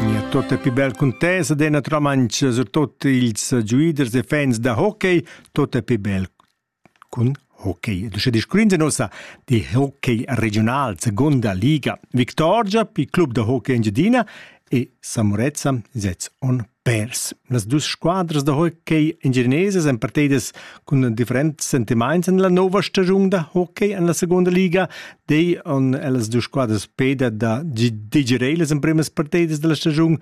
Mia tota più bel contesa de una romancia, surtut ils giuiders e fans da hockey, tota più bel cun hockey. Du sche discurrinze nossa di hockey regional, seconda liga. Victorgia pi club da hockey Engiadina e Samorezza sez on Pers. Las dus squadras da hockey engineses èn partidas cun differents sentimaints en la nova stagiun da hockey en la seconda liga. Dei on ellas dus squadras peda da digerere las emprimas partidas della stagiun,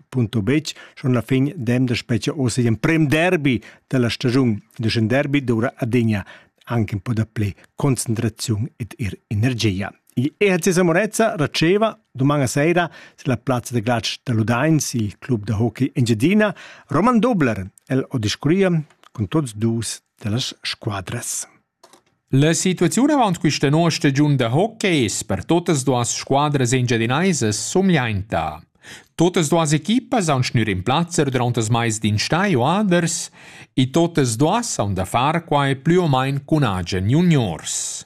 punto bec, schon la fin dem da specie osi in prem derby della stagiun. Dus in derby dura adegna anche un po' da play concentrazione ed ir energia. L'ERC Samonezza raceva doman sera sur la plazza de glatsch da Ludains, il club da hockey Engiadina, Roman Dobler. El o discurria con tots dus dellas squadras. La situaziun avant questa nuova stagiun da hockey es per totas duas squadras engiadinaisas somiainta. Totas duas equipas han schnür in plazza durant das mais d'instai o aders e totas duas han da far quai plü o main cun agen juniors.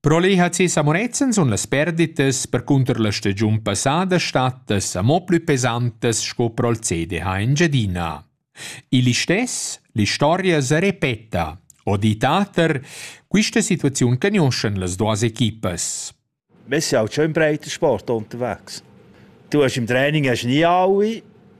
Pro lei ha ses amorezzens un las perditas percunter la stagiun passada stattas amo plü pesantas sco pro'l CDH Engiadina. Il istes, l'istoria se repeta, o ditater, quista situaziun cagnoscen las duas equipas. Wir sind auch schon im Breitensport unterwegs. Du hast im Training hast nie alle,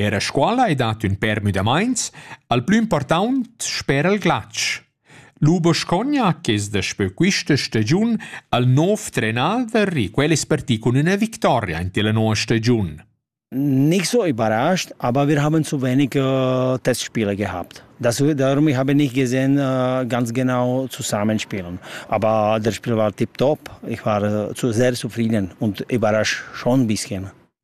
Era a scola ei dat ün pèr müdamaints, al plü important spera il glatsch. Lu Boscogna che es daspö quista stagiun al nov trenader e quel es parti cun üna victoria in tilla noua stagiun. Nicht so überrascht, aber wir haben zu wenig äh, Testspiele gehabt. Das, darum ich habe nicht gesehen, äh, ganz genau zusammenspielen. Aber das Spiel war tiptop. Ich war äh, zu, sehr zufrieden und überrascht schon ein bisschen.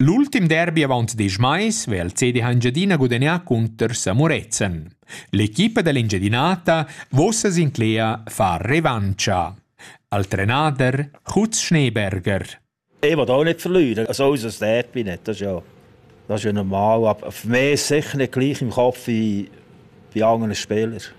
L'ultim derbi avant diesch mais veva il CD Engiadina gudagnà cunter Samurezen. L'equipa dell'Engiadinata vossa sinclea far revancha. Al trenader Hutz Schneeberger. Ich will auch nicht verlieren, also unser Derby nicht, das ist ja, das ist ja normal, aber für mich sicher nicht gleich im Kopf wie bei anderen Spielern.